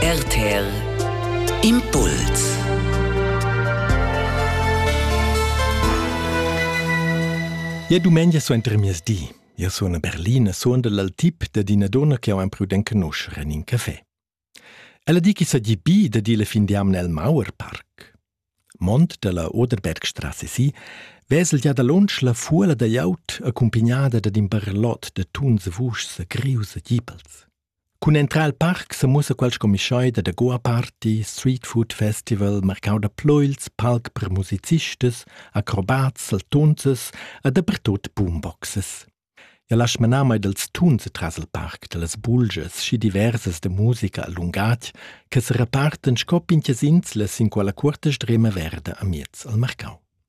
RTL Impuls Ja dumengia suenter mias di. Ja suona Berlina, suona dal tip da d'ina donna che ho imprudent conoscere in un café. Ella di che sa di bi da di le fin di amne al Mauer Park. Mont dalla Oderbergstrasse si vesel ja da lunsch la fuola da jaut accompagnada da d'in barlot da tuns vuschs grius e gipels. Cun entrar al parc semuossa quel sco mischaida da goa-party, street food festival, marcau da pleuils, palc per musicistas, acrobats, saltunzas e dapertut boomboxes. Ja lasch manar mai dals tuns tras il parc da las bulgias schi diversas da musica a lungatg che se reparten sco pinchias inslas in quella cuorta strema verda amiez al marcau.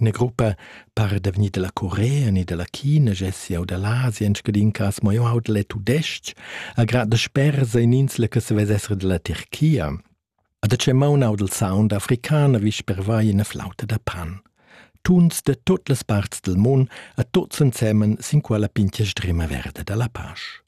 Ina gruppa par da vegnir dalla Corea ni dalla China gessi jau da l'Asia en scadin cas, mo jau haud le tudestg, a grad da spersa in insla che se vess essere della Turchia. A da ce maun haud il sound africana vis per vai ina flauta da pan. Tuns de tutt las parts del mun a tuts ensemen sin quella pintia strema verde dalla pasch.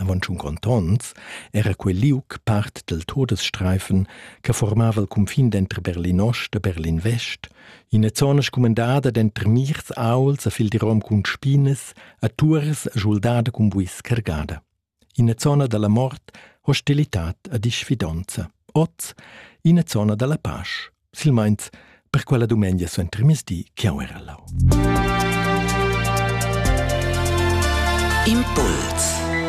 Avon tschun contonts era quei liug part dil Todesstreifen che formava il cunfin denter Berlinost e Berlin-Vest, ina zona scumandada denter mirs aults e fildirom cun spinas e turas schuldada cun buis cargada. Ina zona dalla mort, hostilitad e disfidonza. Oz ina zona dalla pasch. silmains per quella dumengia suentermisdi chiau era lau. Impuls